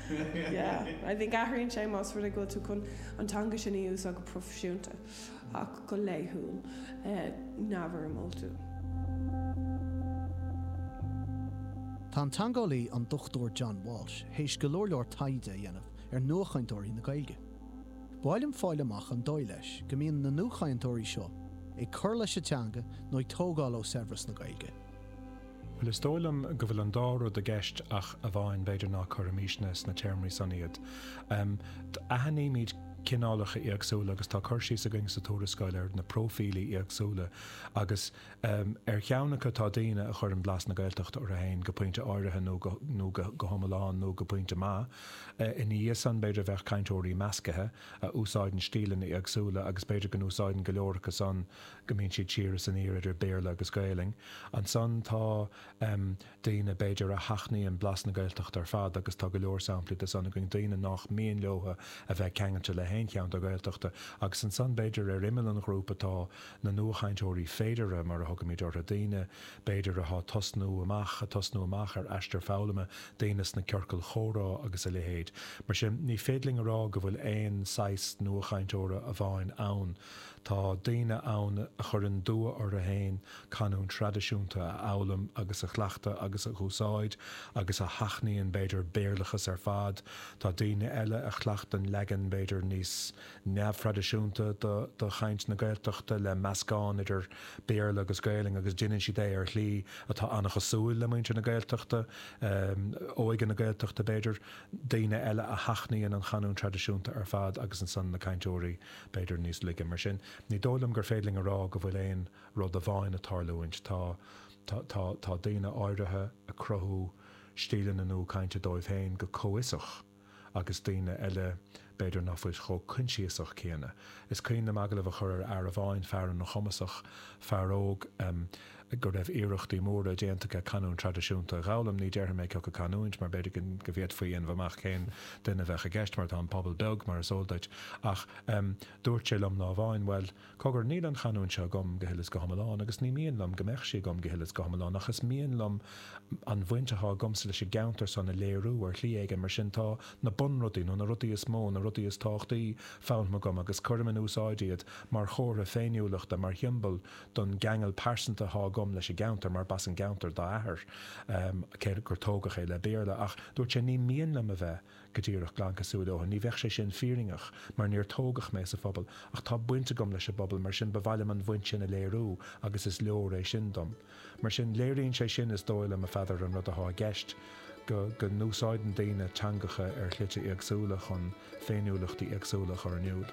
Yeah, I think athraíonn sé más rud é go bhfuil tú chun an teanga sin a úsáid go proifisiúnta ach go laethúil, ní haon mholadh. Tá an teangeolaí an Dr John Walsh théis go leor leor taighde a dhéanamh ar nuachainteoirí na Gaeilge. Ba mhaith liom fáil amach an dóigh leis go mbíonn na nuachainteoirí seo ag cur leis an teanga nó ag tógáil ó saibhreas na Gaeilge. Bhuel, is dóigh liom go bhfuil an dá rud i gceist ach amháin, b'fhéidir, ná cuirfimisne sna téarmaí san iad. Aithnímid cineálacha éagsúla agus tá cur síos againn sa tuarascáil ar na próifílí éagsúla agus ar cheann acu tá daoine a chuireann blas na Gaeltachta orthu féin go pointe áirithe nó go hiomlán nó go pointe maith. Ina dhiaidh san, b'fhéidir, bheadh cainteoirí meascaithe a úsáideann stíleanna éagsúla agus b'fhéidir go n-úsáideann go leor acu san go mbíonn siad siar is aniar idir Béarla agus Gaelainn. Ansan tá, em, daoine, b'fhéidir, a sheachnaíonn blas na Gaeltachta ar fad agus tá go leor samplaí de san againn, daoine nách mian leotha a bheith ceangailte le haon cheann de na Gaeltachtaí agus ansan b'fhéidir ar imeall an ghrúpa tá na nuachainteoirí féideartha mar a thugaimid orthu, daoine, b'fhéidir, atá tosnú amach, a tosnú amach ar aistear foghlama, daoine sna ciorcail chomhrá agus a leithéid. Mar sin ní féidir linn a rá go bhfuil aon saghas nuachainteora amháin ann, Tá daoine ann a chuireann dua orthu fhéin canúint thraidisiúnta a fhoghlaim agus a chleachtadh agus a úsáid agus a sheachnaíonn b'fhéidir Béarlachas ar fad. Tá daoine eile a chleachtann leagan b'fhéidir níos neamhthraidisiúnta de chaint na Gaeltachta le meascán idir Béarla agus Gaolainn agus deineann siad é ar shlí atá an-chosúil le muintir na Gaeltachta, óige na Gaeltachta b'fhéidir. Daoine eile a sheachnaíonn an chanúint thraidisiúnta ar fad agus ansan na cainteoirí b'fhéidir níos laige, mar sin, ní dóigh liom gur féidir linn a rá go bhfuil aon rud amháin ag tarlúint. Tá, tá, tá, tá daoine áirithe ag cruthú stíleanna nua cainte dóibh féin go comhfhiosach agus daoine eile, b'fhéidir, ná fuil chomh coinsiasach céanna. Is cuimhin liom agallamh a chur ar fhear amháin, fear an-chumasach, fear óg, go raibh iarrachtaí móra déanta aige canúint traidisiúnta a dh'fhoghlaim, ní déarfaidh mé cioca an canúint, mar b'fhéidir go bhféadfaí a dhéanamh amach cén duine a bheadh i gceist, mar tá an pobal beag, mar is eol duit, ach dúirt sé liom lá amháin, bhuel, cogar, níl an chanúint seo agam go huile is go hiomlán, agus ní mian liom go mbeadh sí agam go huile is go hiomlán, ach is mian liom an bhaint atá agamsa leis an gceantar san a léiriú ar shlí éigin, mar sin tá na bunrudaí, nó na rudaí is mó, na rudaí is tábhachtaí foghlamtha agam, agus cuirim in úsáid iad mar chomhartha féiniúlachta, mar shiombail don gceangal pearsanta atá agam leis an gceantar mar b'as an gceantar dá athair cé gur tógadh é le Béarla ach dúirt sé ní mian liom a bheith go díreach glan cosúil leotha, ní bheadh sé sin fírinneach mar níor tógadh mé sa phobal ach tá baint agam leis an bpobal mar sin ba mhaith liom an bhaint sin a léiriú agus is leor é sin dom. Mar sin léiríonn sé sin is dóigh liom a Pheadair an rud atá i gceist, go n-úsáideann daoine teangacha ar shlite éagsúla chun féiniúlachtaí éagsúla a chur in iúl.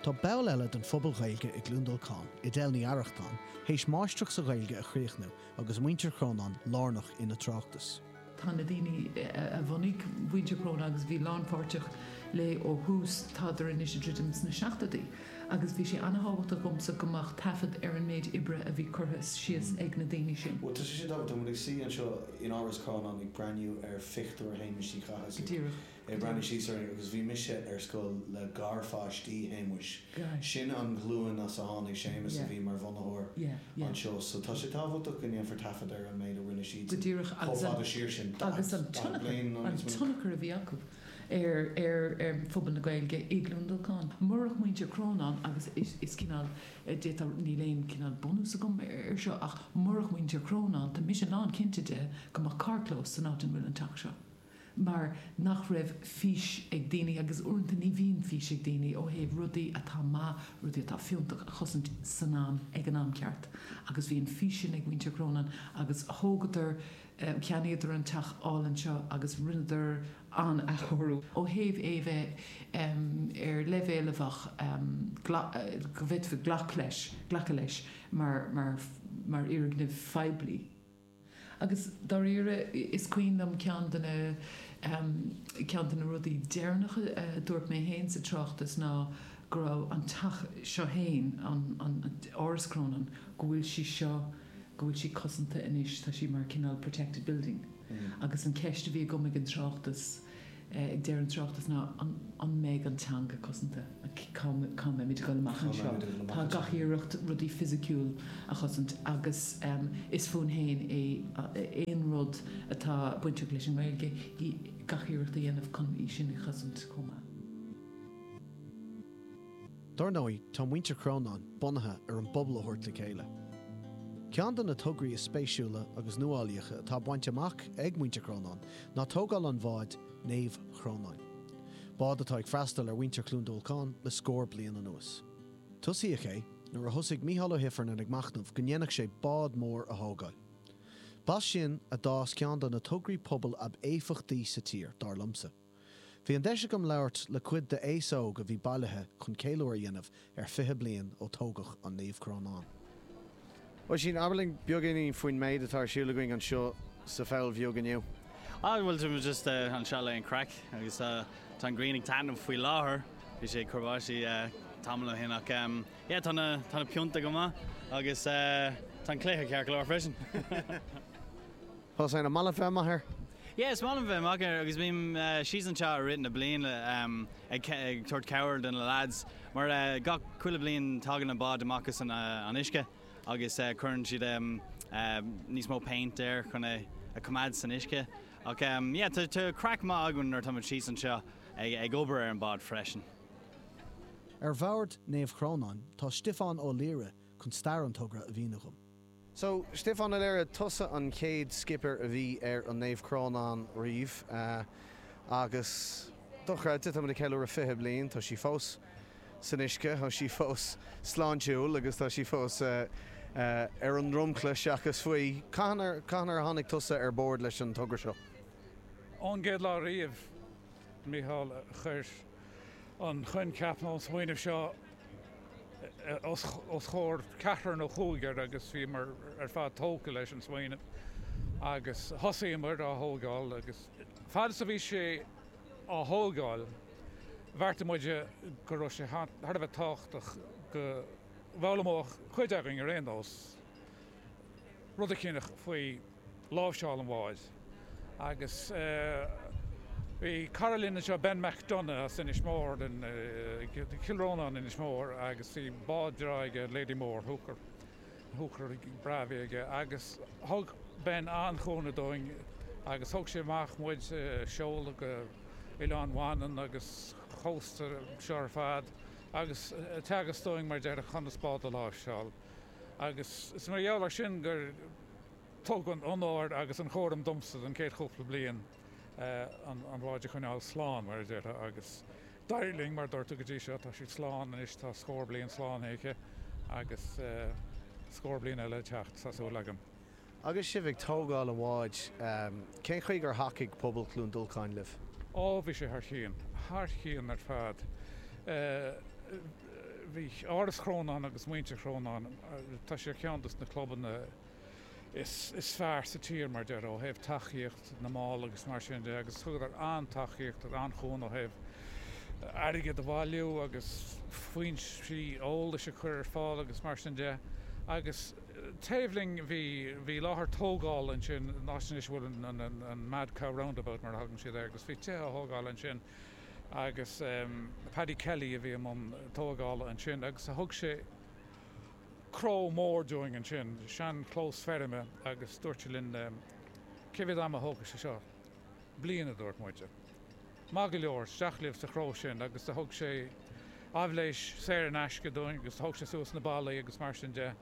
Tá ball eile den phobal Gaeilge i gCluain Dolcáin, Edel Ní Arrachtáin, théis máistreacht sa Ghaeilge a chríochnú agus muintir Chrónáin lárnach ina tráchtas. Tá na daoine a bhunaigh Muintir Chrónáin agus a bhí lánpháirteach léi ó thús, tádar anois ag druidim leis na seachtóidí agus bhí sé an-thábhachtach domsa go mbeadh taifead ar an méid oibre a bhí curtha síos ag na daoine sin. Bhuel, tá sé sin tábhachtach. Muid ag suí anseo in Áras Chrónáin ag breathnú ar phictiúr Shéamuis Uí Chathasaigh. Díreach. ag breathnú síos orainn agus bhí mise ar scoil le garpháistí Shéamuis. Sin an ghlúin as a tháinig Séamus a bhí mar bhunaitheoir anseo so tá sé tábhachtach go ndéanfar taifead ar an méid a rinne siadsan chomh fada siar sin, daichead bliain nó níos mó. Go díreach, agus an tionchar a bhí acu ar phobal na Gaeilge i gCluain Dolcáin. Murach Muintir Chrónáin agus is cineál, d'fhéadfá, níl aon cineál bunús agam air seo ach murach Muintir Chrónáin tá mise lánchinnte de go mbeadh carrchlós san áit ina bhfuil an teach seo. mar nach raibh fís ag daoine, agus uaireanta ní bhíonn fís ag daoine, ó thaobh rudaí atá maith, rudaí atá fiúntach, a chosaint san am, ag an am ceart. Agus bhí an fís sin ag Muintir Chrónáin, agus thógadar, cheannaíodar an teach álainn seo, agus rinneadar an-athchóiriú, ó thaobh é a bheith ar leibhéal a bheadh, go bhféadfaí glacadh leis mar fhoirgneamh phoiblí. Agus dáiríre, is cuimhin liom ceann de na, em, ceann de na rudaí deireanacha a dúirt mé féin sa tráchtas ná go raibh an teach seo féin, an, an, an, Áras Chrónáin, go bhfuil sí seo, go bhfuil sí cosanta anois, tá sí mar cineál protected building. Agus an cheist a bhí agam ag an tráchtas, ag deireadh an tráchtas ná an mbeidh an teanga cosanta? Cá mbeimid ag dul amach anseo? Tá gach iarracht rudaí fisiciúla a chosaint agus is fúinn féin é aon rud atá bainteach leis an nGaeilge, gach iarracht a dhéanamh chun í sin a chosaint chomh maith. Dar ndóigh, tá Muintir Chrónáin bunaithe ar an bpobal a thabhairt le chéile. Ceann de na tograí is spéisiúla agus nuálaíocha atá bainte amach ag Muintir Chrónáin ná tógáil an bháid Naomh Crónán, bád atá ag freastal ar mhuintir Chluain Dolcáin le scór bliain anuas. Tosaíodh é nuair a thosaigh Micheál Ó hIfearnain ag machnamh go ndéanfadh sé bád mór a thógáil. B'as sin a d'fhás ceann de na tograí pobail ab éifeachtaí sa tír, dar liomsa. Bhí an deis agam labhairt le cuid d'aos óg a bhí bailithe chun ceiliúradh a dhéanamh ar 20 bliain ó tógadh an Naomh Crónán. Oisín, abair linn beagáinín faoin méid atá ar siúl againn anseo sa Pholl Bheag inniu. Ah, bhuel, tá muid just anseo le haghaidh an craic agus tá, tá an ghrian ag taitneamh faoi láthair. Bhí sé ag cur báistí tamall ó shin ach yeah, tá, tá na pionta go maith agus tá an cluiche ceart go leor freisin. Tusa, an maith leat bheith amach air? Yeah, is maith liom bheith amach air agus bím síos anseo i rith na bliana ag tabhairt cabhair do na lads mar gach, chuile bhliain tagann an bád amach as an uisce agus cuireann siad níos mó péint air chun é a choimeád san uisce ach yeah, tá craic maith againn nuair atá muid síos anseo ag obair ar an bád freisin. Ar bhord Naomh Chrónáin tá Stiofán Ó Laoire chun stair an togra a mhíniú dhom. So, Stiofán Ó Laoire, tusa an chéad Skipper a bhí ar an Naomh Crónán riamh. Agus, dochreidte, táimid ag ceiliúradh fiche bliain. Tá sí fós san uisce, tá sí fós sláintiúil agus tá sí fós ar an ndromchla seachas faoi. Cathain ar, cathain ar tháinig tusa ar bord leis an togra seo? Ón gcéad lá riamh, Mícheál a chuir an coincheap nó an smaoineamh seo os comhair ceathrar nó cúigear agus bhíomar ar fad tógtha leis an smaoineamh agus thosaíomar á thógáil agus fad is a bhí sé á thógáil bheartaigh muid go raibh sé thar a bheith tábhachtach go bhfoghlaimeodh cuid againn ar aon nós rud eicíneach faoi láimhseáil an bháid agus bhí cara linn anseo, Ben McDonagh as Inis Mór, Cill Rónáin Inis Mór agus bhí bád breá aige, Lady Mór, hooker, hooker breá a bhí aige agus thug Ben an-chúnamh dúinn agus thug sé amach muid, seoladh go Oileán Mhanann agus cósta seo ar fad agus teagasc dúinn mar a déarfá conas bád a láimhseáil. Agus is mar gheall air sin gur tugadh an onóir agus an chúram domsa don chéad chúpla bliain an bháid a choinneáil slán, mar a déarfá. Agus d'éirigh linn, mar dúirt tú, go dtí seo. Tá sí slán anois, tá scór bliain slán aici agus scór bliain eile le teacht, tá súil agam. Agus sibh ag tógáil an bháid, cén chaoi gur thacaigh pobal Chluain Dolcáin libh? Ó, bhí sé thar cionn, thar cionn ar fad. Bhí Áras Chrónáin agus muintir Chrónáin, tá sé ar cheann dos na clubanna is fearr sa tír, mar deir, ó thaobh tacaíocht, na mball agus mar sin de agus thugadar an-tacaíocht agus an-chúnamh ó thaobh airgead a bhailiú agus foinsí eolais a chur ar fáil agus mar sin de agus taobh linn bhí, bhí láthair tógála ansin, an áit anois a bhfuil an, an Mad Cow Roundabout mar a thugann siad air agus bhí tithe á thógáil ansin agus Paddy Kelly a bhí i mbun tógála ansin agus thug sé, cró mór dúinn ansin, sean chlós feirme agus dúirt sé linn cé mhéad ama a thógfaidh sé seo? Bliain a dúirt muid. Maith go leor, isteach libh sa chró sin agus do thug sé aibhléis saor in aisce dúinn agus do thóg sé suas na ballaí agus mar sin de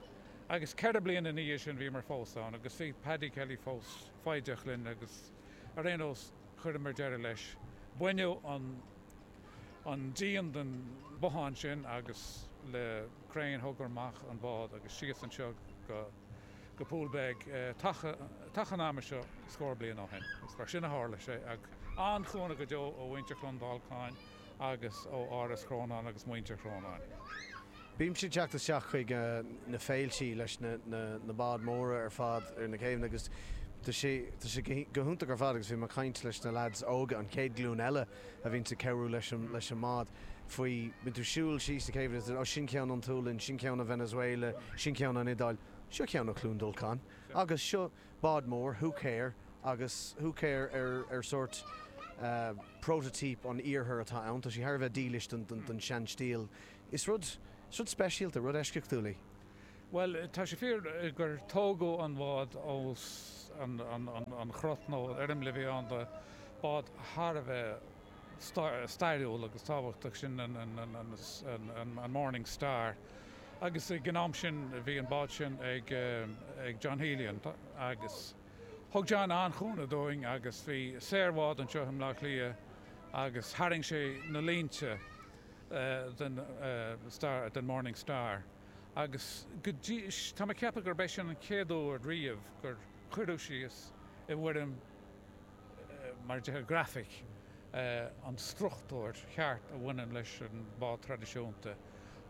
agus ceithre bliana ina dhiaidh sin bhíomar fós ann agus bhí Paddy Kelly fós foighdeach linn agus ar aon nós chuireamar deireadh leis, baineadh an díon den bhothán sin agus le. crann thugamar amach an bád agus síos anseo go go Poolbeg taca an ama seo scór bliain ó shin. Is mar sin a tharla sé. An-chúnamh go deo ó mhuintir Chluain Dolcáin agus ó Áras Chrónáin agus muintir Chrónáin. Bímse ag teacht isteach chuig na féiltí leis na na báid mhóra ar fad ar na céibheanna agus tá sé go hiontach ar fad agus bhí mé ag caint leis na leaids óga, an chéad ghlúin eile, a bhíonns ag cabhrú leis an leis an mbád faoi bíonn tú siúl síos an chéibh is ó sin ceann ón tSualainn sin ceann ó Venezuela sin ceann ón Iodáil seo ceann ó Chluain Dolcáin agus seo bád mór húicéir agus húicéir ar ar sórt prototype ón iarthar atá ann tá sí thar a bheith dílis don don don sean stíl is rud is rud speisialta rud eisceachtúil í. Bhuel, tá sé fíor gur tógadh an bád as an gcruth, nó an fhoirm a bhí ann do bád thar a bheith stairiúil agus tábhachtach, sin an Morning Star, agus ag an am sin bhí an bád sin ag John Healy agus thug John an-chúnamh dúinn agus bhí saor báid anseo i mBleá Cliath agus tharraing sé na línte den Morning Star. agus go dtí, tá mé ag ceapadh gurb é sin an chéad uair riamh gur cuireadh síos i bhfoirm, mar a déarfá, grafaic an struchtúr cheart a bhaineann leis an bád traidisiúnta.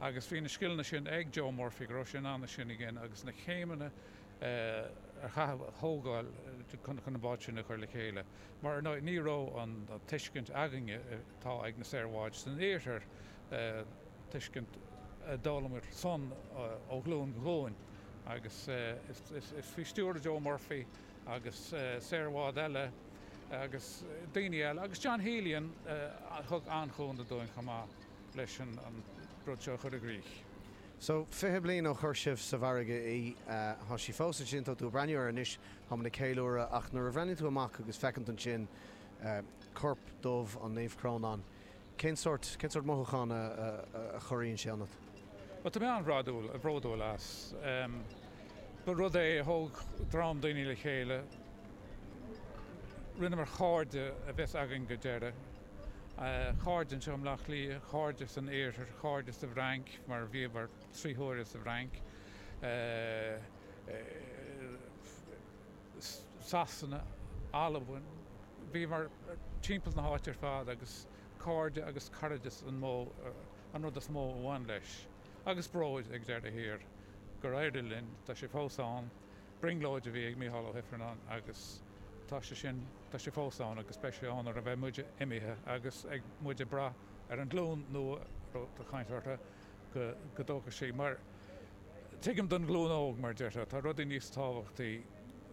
Agus bhí na scileanna sin ag Joe Murphy, go raibh sé in ann é sin a dhéanamh agus na céimeanna a chaitheamh, a thógáil chun an bád sin a chur le chéile. Mar, ar ndóigh, ní raibh an tuiscint againne atá ag na saoir bháid san iarthar, tuiscint a d'fhoghlaim muid sin ó ghlúin go glúin agus is faoi stiúir Joe Murphy agus saor báid eile agus daoine eile agus John Healion a thug an-chúnamh dúinn chomh maith leis an rud seo a chur i gcrích. So, fiche bliain ó chuir sibh sa bhfarraige í, tá sí fós ansin, tá tú ag breathnú uirthi anois, tá muid ag ceiliúradh, ach nuair a bhreathnaíonn tú amach agus feiceann tú ansin corp dubh an Naomh Crónán, Cén sórt mothúchán a chorraíonn sé ionat? Bhuel, tá mé an-bhródúil as. Ba rud é a thóg dream daoine le chéile, rinneamar cairde a bheas againn go deireadh, cairde anseo i mBleá Cliath, cairde san Iarthar, cairde sa bhFrainc, mar bhíomar trí huaire sa bhFrainc, Sasana, Albain, bhíomar timpeall na háite ar fad agus cairde agus cairdeas an rud is mó a bhain leis. Agus bróid ag deireadh thiar gur éirigh linn, tá sé fós ann, brionglóid a bhí ag Mícheál Ó hIfearnáin agus tá sé sin, tá sé fós ann agus beidh sé ann nuair a bheidh muide imithe agus tá muid ag brath ar an nglúin nua a raibh caint orthu go dtógfaidh sé. Mar, tuigim don ghlúin óg, mar a déarfá, tá rudaí níos tábhachtaí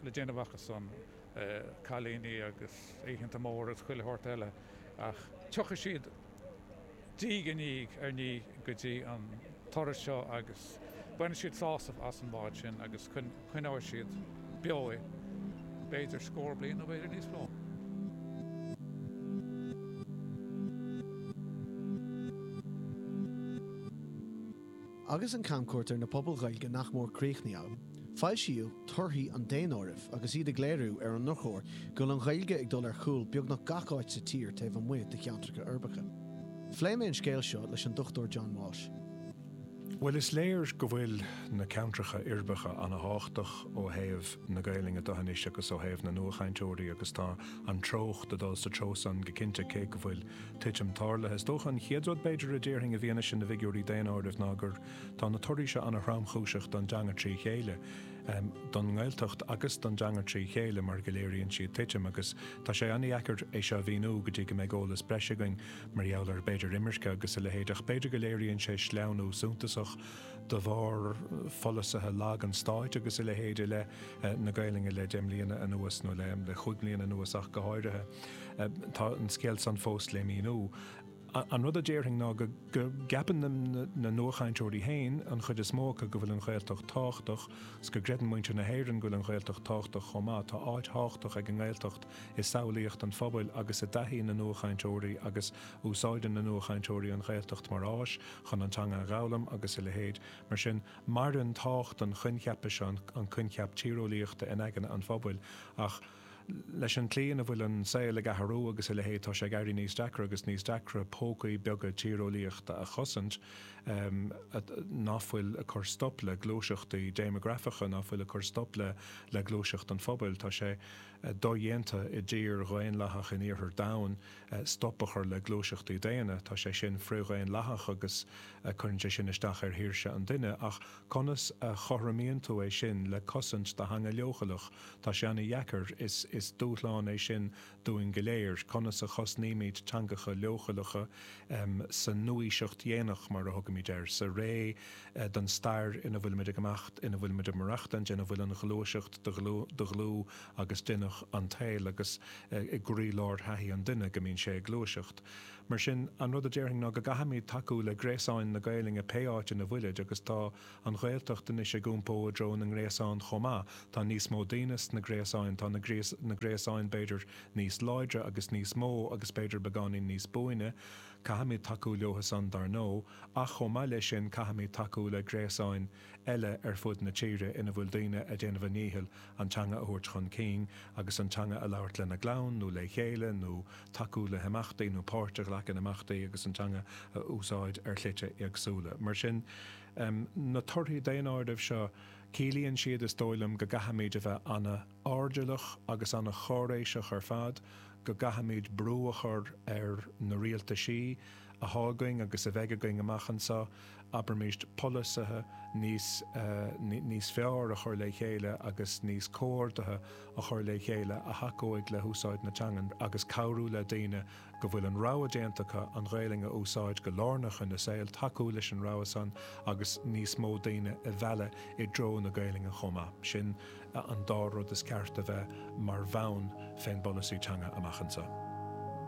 le déanamh acu san, cailíní agus oícheanta móra agus chuile shórt eile, ach tiocfaidh siad de réir i ndiaidh ar ndiaidh go dtí an turas seo agus bainfidh siad sásamh as an mbád sin agus coinneoidh siad beo é, b'fhéidir scór bliain nó b'fhéidir níos mó. Agus an camchuairt ar na pobail Ghaeilge nach mór críochnaithe, foilsíodh torthaí an daonáirimh agus iad ag léiriú ar an ndrochuair go bhfuil an Ghaeilge ag dul ar chúl beagnach gach áit sa tír taobh amuigh de cheantracha uirbeacha. Phléigh mé an scéal seo leis an Dr John Walsh. Bhuel, is léir go bhfuil na ceantracha uirbeacha an-tábhachtach ó thaobh na Gaelainne de anois agus ó thaobh na nuachainteoirí agus tá an treocht ag dul sa treo san go cinnte, cé go bhfuil titim tarlaithe. Is dócha an chéad rud b'fhéidir a déarfainn i bhfianaise na bhfigiúirí daonáirimh ná gur tá na torthaí seo an-thromchúiseach don dteanga trí chéile, don nGaeltacht agus don dteanga trí chéile mar go léiríonn siad titim agus tá sé an-deacair é seo a mhíniú go dtí go mbeidh eolas breise againn. mar gheall ar b'fhéidir imirce agus a leithéid, ach b'fhéidir go léiríonn sé sleamhnú suntasach de bharr pholasaithe lag an stáit agus a leithéid i leith na Gaelainne le deich mbliana anuas, nó le chúig mbliana anuas ach go háirithe. Tá an scéal san fós le míniú. An rud a déarfainn ná go gceapann na nuachainteoirí féin, an chuid is mó acu, go bhfuil an Ghaeltacht tábhachtach, 's go gcreideann muintir na hÉireann go bhfuil an Ghaeltacht tábhachtach chomh maith. Tá áit thábhachtach ag an nGaeltacht i samhlaíocht an phobail agus i dtaithí na nuachainteoirí agus úsáideann na nuachainteoirí an Ghaeltacht mar áis chun an teanga a dh'fhoghlaim agus a leithéid. Mar sin, maireann tábhacht an choincheapa seo, an coincheap tíreolaíochta, in aigne an phobail ach leis an tslí ina bhfuil an saol ag athrú agus a leithéid tá sé ag éirí níos deacra agus níos deacra pócaí beaga tíreolaíochta a chosaint ná fuil ag cur stop le gluaiseachtaí déimeagrafacha, ná fuil ag cur stop le gluaiseacht an phobail. Tá sé. dodhéanta i dtír dhaonlathach in iarthar domhain, stop a chur le gluaiseachtaí daonna. Tá sé sin frith-dhaonlathach agus cuireann sé sin isteach ar shaoirse an duine. Ach conas a chothromaíonn tú é sin le cosaint do theanga leochaileach? Tá sé an-dheacair. Is dúshlán é sin dúinn go léir. Conas a chosnaímid teangacha leochaileacha sa nua-aoiseacht dhéanach, mar a thugaimid air, sa ré don stair ina bhfuilimid ag imeacht, ina bhfuilimid ag maireachtaint, ina bhfuil an ghluaiseacht de dhlúth agus d'inneach an tsaoil, agus i gcroílár thaithí an duine, go mbíonn sé ag gluaiseacht. Mar sin, an rud a déarfainn ná go gcaithfimid tacú le gréasáin na Gaelainne pé áit ina bhfuilid, agus tá an Ghaeltacht anois ag iompó i dtreo na ngréasán chomh maith, tá níos mó daoine sna gréasáin, tá na gréasáin b'fhéidir níos láidre agus níos mó agus b'fhéidir beagáinín níos buaine, Caithfimid tacú leothusan, dar ndóigh, ach chomh maith leis sin caithfimid tacú le gréasáin eile ar fud na tíre ina bhfuil daoine ag déanamh a ndíchill an teanga a thabhairt chun cinn agus an teanga a labhairt lena gclann nó le chéile nó tacú le himeachtaí nó páirt a ghlacadh in imeachtaí agus an teanga a úsáid ar shlite éagsúla. Mar sin, na torthaí daonáirimh seo, ciallaíonn siad, is dóigh liom, go gcaithfimid a bheith an-. airdeallach agus ana-cháiréiseach ar fad go gcaithfimid brú a chur ar na rialtaisí atá againn agus a bheidh againn amach anseo, abraimís, polasaithe níos, níos fearr a chur le chéile agus níos comhordaithe a chur le chéile a thacóidh le húsáid na teangan agus cabhrú le daoine go bhfuil an rogha déanta acu an Ghaelainn a úsáid go lárnach ina saol, tacú leis an rogha san agus níos mó daoine a mhealladh i dtreo na Gaelainne chomh maith. Sin an dá rud is ceart a bheith mar bhonn fén bpolasaí teanga amach anseo.